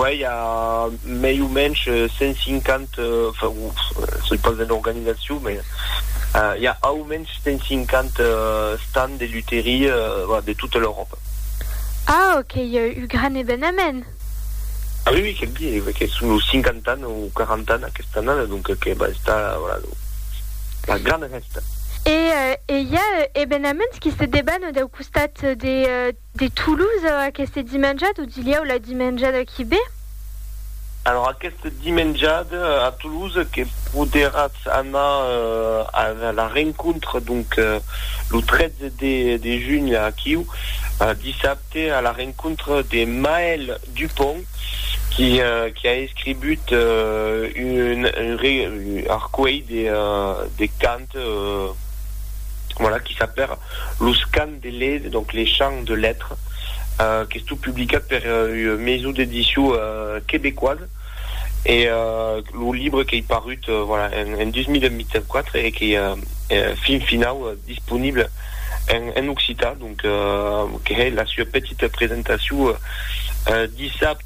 Uèi a mei o mensh 150, se i pas de l'organizacion, me i a au mensh 150 stands de lutherie de tota l'Euròpa. Ah, qu'ei un gran evenament! Ah oui, oui, que'm di, que son los 50 ans o 40 ans aquesta annada, donc que va estar una grana fèsta. E i a evenaments qui se debanent dau costat de. De Toulouse aqueste dimenjat o dilhèu la dimenjada qui ve? Alors aqueste dimenjat a Toulouse que poderatz anar a la rencontre donc lo 13 de junh aquiu dissabte a la rencontre de Maël Dupont qui qui a escribut un arcuelh de de cant voilà qui s'apèra los cants de lait, donc les champs de lettres, qu'estó publicat per ua maison d'édition québécoise e lo libre qu'ei parut voilà en 2024 e qu'ei fin finau disponible en occitan, donc que hèi la sua petita presentacion dissabte.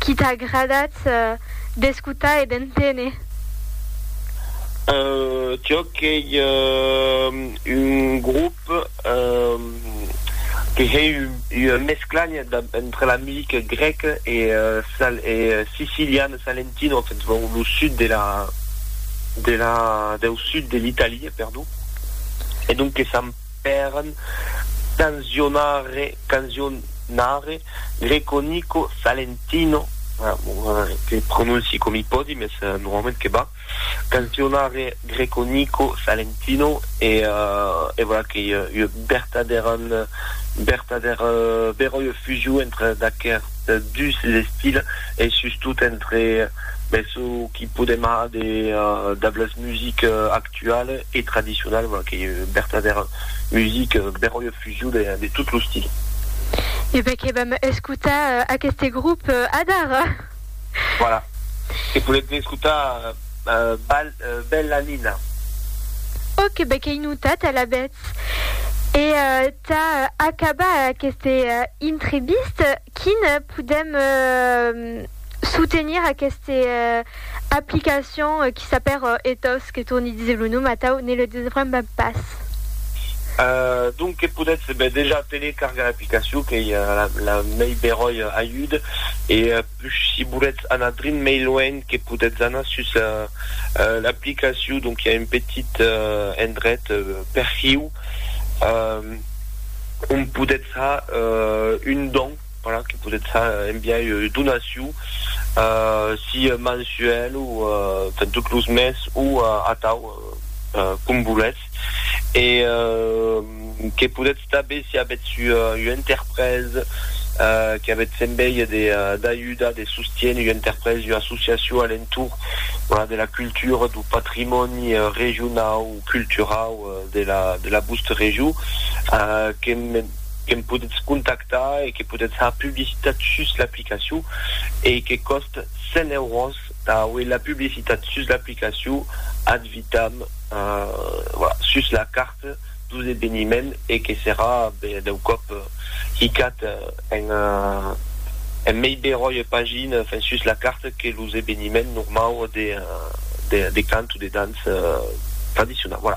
Qui t'a agradat d'escotar e d'enténer? Tioc ei un grop que hei ua mescla entre la musica grèca e siciliana, salentino, en fait, lo sud de la, de la, deu sud de l'Italia, perdon, e donc que s'an, pèran canzionare canzionare Greco Nico Salentino que prononci com i pòdi mes normalament que va canzionare Greco Nico Salentino e e voilà que ua ua bertadèra bertadèra bèra ua fusion entre d'aquerts dus estils e sustot entre mes çò qui podem har de de las musiques actualas actual e tradicional, voilà, qu'ei ua vertadèra musica beròia fusion de, de tot lo stil. E ben que vam escotar aqueste grop adara. Voilà. E podètz escotar Bal, Bella Nina. Ok, ben qu'ei notat alavetz. E tà acabar aqueste intrevista, quin podèm. soutenir aqueste aplicacion qui s'apèr Ethos, que torni díser lo nom atau ne le desbremba pas. Donc que podètz dejà telecargar l'aplicacion qu'ei la mei beròi ajud e pus si volètz anar drin mei luenh que podètz anar sus l'aplicacion donc i a un petit endret perfiu ont podètz ha un don. Voilà, que podètz far en biais de donacion, si mensuèl o enfin tot los mes o atau, com volètz. E que podètz tanben, si avètz ua interpresa, que avètz en biais de d'ajudar, de sostien ua interpresa, ua associacion a l'entorn, voilà, de la cultura, dau patrimòni regionau o culturau de la de la vòstra region, que me. que me podetz contactar e que podetz har publicitat sus l'aplicacion e que còst 100 euros tà auer la publicitat sus l'aplicacion ad vitam sus la carta dos eveniment e que serà dau còp hicat en mei beròia pagina enfin sus la carta que los eveniment normau de cant o de dança tradicionau.